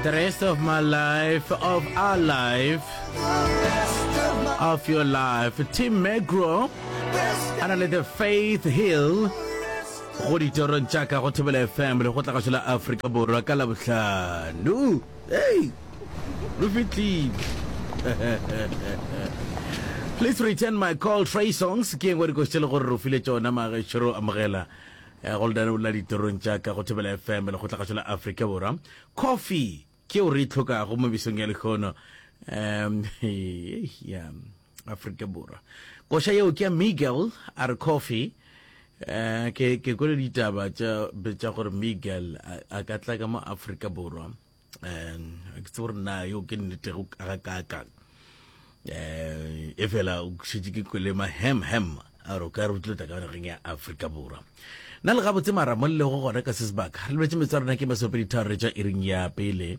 The rest of my life, of our life, of your life. Tim Magro, a na le The Faith Hill go ditorong tša ka go thobela fm le go tla gašo la aforika borwa ka labohlano ei lo fitlile please return my call tray songs ke engwe dikositše le gore re file tšona magešoro amogela eh, goldane o la ditorong tša ka go thobela fm le go tla gašo la aforika borwa Kofi ke o re e tlhokago mo besong ya lehono um ya Afrika Borwa. Koša yeo ke ya Miguel a re Kofi um ke ke kwele ditaba tša tša gore Miguel a ka tla ka mo Afrika Borwa um ke tse gore na yo ke nnete go ka ka ka Eh, efela o šetše ke kwelema hem hem a re o ka re utlwetsa ka nageng ya aforika borwa na le gabotse mara mo lego gona ka se sebaka re lebetse metsa rona ke masopedi tharo re tša iring ya pele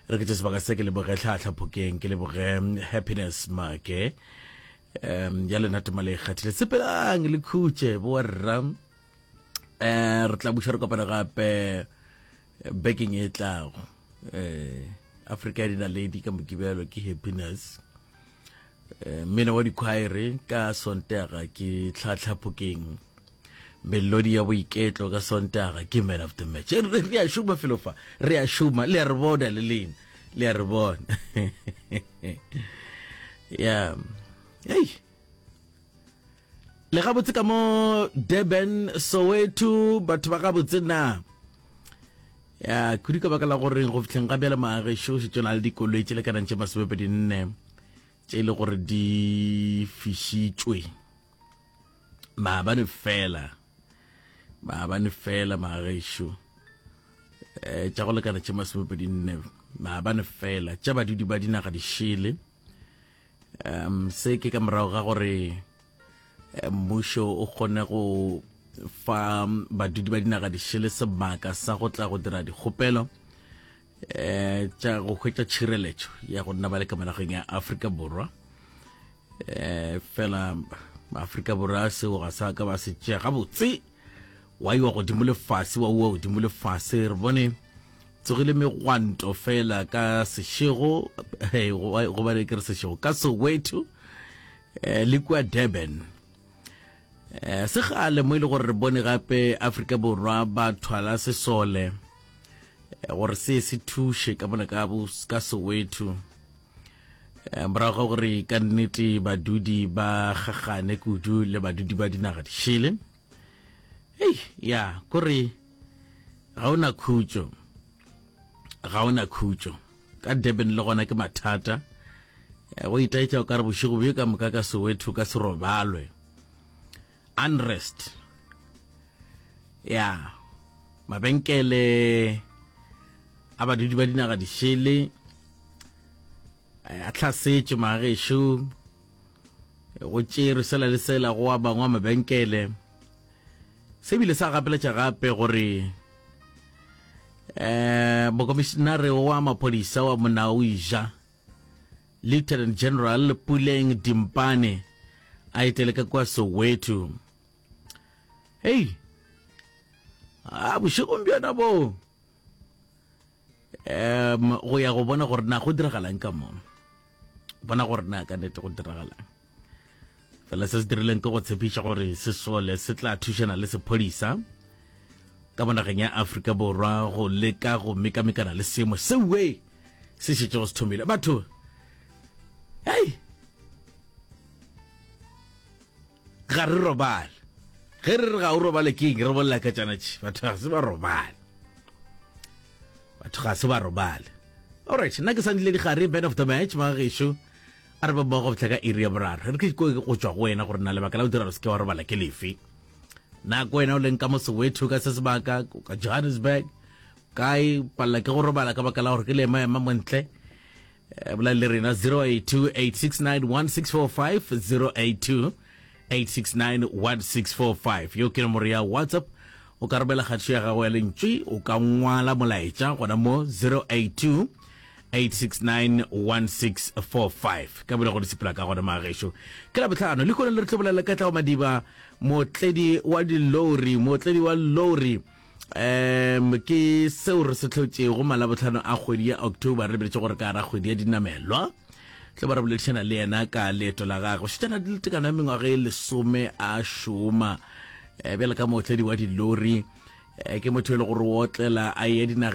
re ke tše sebaka se ke leboge tlhatlha phokeng ke leboge happiness make um ya lena tema le ikgathile sepelang le khutše boarra um eh, re tla buša re kopana gape bekeng e tlago eh, afrika ya dinaledi ka mokibelo ke happiness eh, mmino wa dikhwaere ka sontaga ke tlhatlhaphokeng melodi ya boiketlo ka sontaga ke man of the match eh, re a šoma felofa re a šoma le a re bona le lena le a re bona ya ei le gabotse ka mo durban soweto batho ba gabotse na ya kudu ka baka la goreng go fitlheng ga bjale maagešo šetso na le dikoloi tše lekanang tše masomepedi nne tše e le gore di fišitšwe maabane fela maabane fela maagešo um eh, tša go lekana tše masomepedi nne maabane fela tša badudi ba dinaga dišele um se ke ka morago ga gore eh, mmušo o kgone go fa badudi ba dinaga dišele sebaka sa go tla go dira dikgopelo um tša go hwetša tšhireletšo ya go nna ba le ka monageng ya aforika borwa um fela aforika borwa seo ga sa ka ba se tšea gabotse Wa iwa godimo le fase, wa uwa godimo le fase. Re bone tsogile megwanto fela ka sešego hey, go ba ke re sešego ka soweto eh, le kua durban eh, se gale mo e le gore re bone gape afrika borwa ba thwala sesole eh, gore se se thuše ka bona ka soweto eh, morago ga gore ka nnete badudi ba gagane kudu le badudi ba dinaga dišele hei ya kore ga o na khutso ga o na khutso ka durban le gona ke mathata eh, go itaetša o ka re bošego bjo ka moka ka sowetho ka serobalwe Unrest. Ya, mabenkele a badudi ba dinaga dišele eh, a tlhasetše magešo go tšerwe sela le sela go wa bangwe mabenkele se bile sa gapeletša gape gore um eh, mokomišinare wa maphodisa wa monaoija Lieutenant General Puleng Dimpane a etele ka kwa Soweto. Hei, a ah, bošegong bjona bo um go ya go bona gore na go diragalang ka mo bona gore na ka nete go diragalang fela se se dirileng ke go tshepiša gore sesole se tla thušana le sephodisa ka monageng ya afrika borwa go leka go mekamekana le seemo sewe se šetšego se thomile batho hei ga re robale ge re re ga o robale ke eng re bolela ka tšanatši batho ga se ba robale batho ga se ba robale alright nna ke sa ntlile digare band of the match ba gešo A re ba boa go fihla ka iri ya boraro. E re ke dikoe go tšwa go wena gore na lebaka la go dira gore se ke wa robala ke lefe. Na ko wena o leng ka mo Soweto ka se sebaka ka Johannesburg kae palela ke go robala ka baka la gore ke le ema ema montle eh, bola le rena 082 869 1645 082 8691645 yo ke nomoro ya whatsapp o ka romela kgatšo ya gago ya lentšwe o ka ngwala molaetša gona mo 082 8691645 ka bile go di sepela ka gona magešo ke la botlhano le kone le re tlo bolela ka tlago madiba motledi wa dilori motledi wa lori Um ke seo re se tlhotšego malabotlhano a kgwedi ya october re beletše gore ka gara kgwedi ya dinamelwa tle ba re boledišana le yena ka leeto la gagwe šetšana di le tekano ya mengwaga e lesome a šoma um bjale ka mootledi wa dilori um ke motho e le gore o otlela a ye dinageng